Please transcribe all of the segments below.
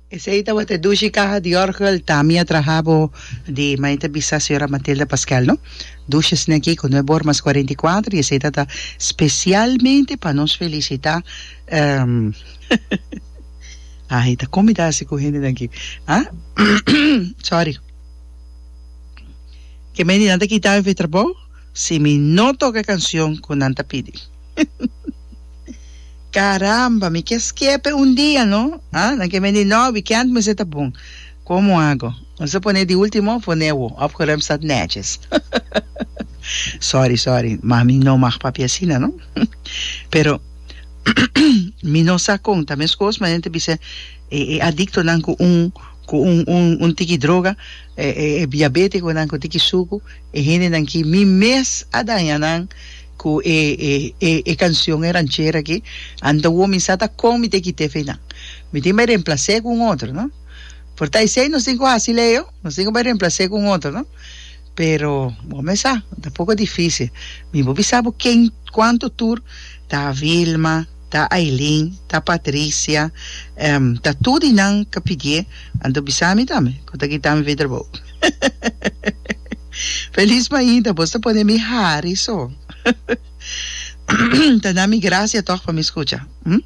Esei tabata e dushi kaha di orgel ta mi a traha bo di mei ta bisa señora Matilda Pasquel no dushi esne aki con nueve bormas cuarenta y cuatro y esei tata specialmente pa nos felicita ai ta con mi ta haci cu hendenan aki ah sorry ke mei di nan ta kita mi fi trabou si mi no toca e cancion cu nan ta pidi. Caramba, mi ke skepe un dia no. Ah, nan ke beni no weekend mester ta bon. Komo ago? Mester ta pone di ultimo of pone awo of ke Remstad netjes. Sorry, sorry, ma mi no mag papia asina no. Pero mi no sa kon ta meskos ma nan ta bisa e e adiktonan ku un ku un un un tiki droga, e e biabetikonan ku tiki suku, e hendenan ki mi mes a daña nan. Cu e e e e cancion e ranchera aki anta wo mi sa ta con mi te kit'e feynan mi tin bay remplac'e cu un otro no por ta esey nos tin cu haci leo nos tin cu bay remplac'e cu un otro no pero bo me sa ta poco dificil mi bo bisa bo ken cuanto tur ta Vilma ta Ailin ta Patricia ta tudinan ca pidié anto bisa mi tambe cu ta kitami fi trabou. Feliz mainta bos ta pone mi hari so ta na mi gracia tog pa mi scucha hm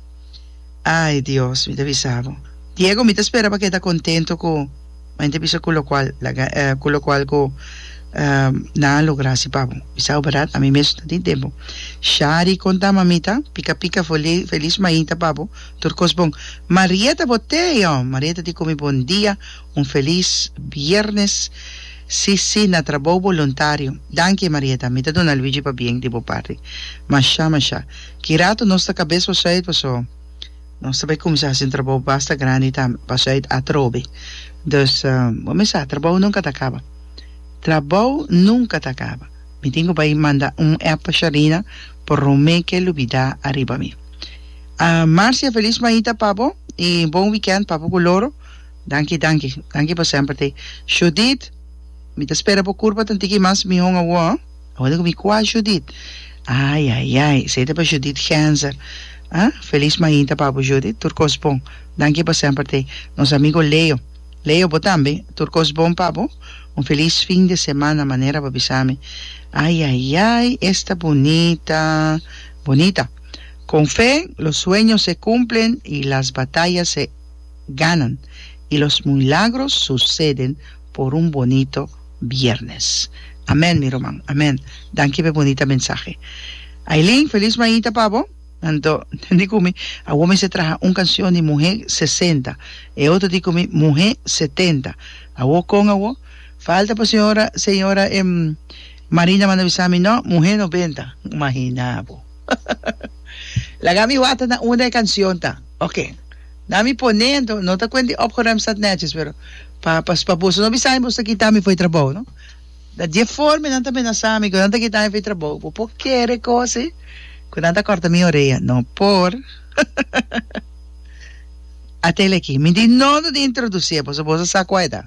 ay Dios mi ta bisa bo Diego mi ta spera pa keda contento cu mainta bisa cu locual cu locual cu nan a logra asi pa bo bisa bo berdad ami mesun ta tin den bo Shari con ta mamita pica pica feliz mainta pa bo tur cos bon Marieta bo tey ho Marieta di cu mi bon dia Un felis biernes si si na trabou boluntario dankie Marieta mi ta duna Luigi pa bien di bo parti masha masha ki rato nos ta cabes pa shuit paso nos ta bay cuminsa haci un trabou basta grandi ta pa shuit atrobe dus bo mi sa trabou nunca ta caba trabou nunca ta caba mi tin cu bay manda un app pa Sharina por rome ke lubida ariba mi Marcia felis maita pa bo y bon weekend papo cu loro. Danki danki danki pa semper tei. Judith mi ta spera bo kurpa tantiki mas mi honga wou ah awor ku mi kua Judith ai ai ai esei ta pa Judith Genzer ah felis mainta pa bo Judith tur kos bon danki pa semper tei nos amigo Leo Leo bo tambe tur kos bon pa bo un felis fin de semana manera bo a bisa mi ai ai ai esta bunita bunita con fe los sueños se cumplen y las batallas se ganan y los muilagros suceden por un bonito Viernes amen mi ruman amen danki pe bonita mensahe Ailin feliz mañita pa bo anto di cu mi awor mester traha un cancion di muhe sesenta e otro di cu mi muhe setenta awor con awor falta pa señora señora Marina manda bisa mi no muhe noventa imagina bo laga mi wata na una e cancion ta oke. Na mi pone ento no ta kuent di opgeruimd sat netjes pero pa pa pa boso no bisa mi boso ta kita mi for e trabou no na dje forma e nan ta menasa mi ku nan ta kita mi for e trabou bo por kere kosi ku nan ta korta mi orea no por ateli aki mi di no lo di introdusí e boso boso sa kua e ta.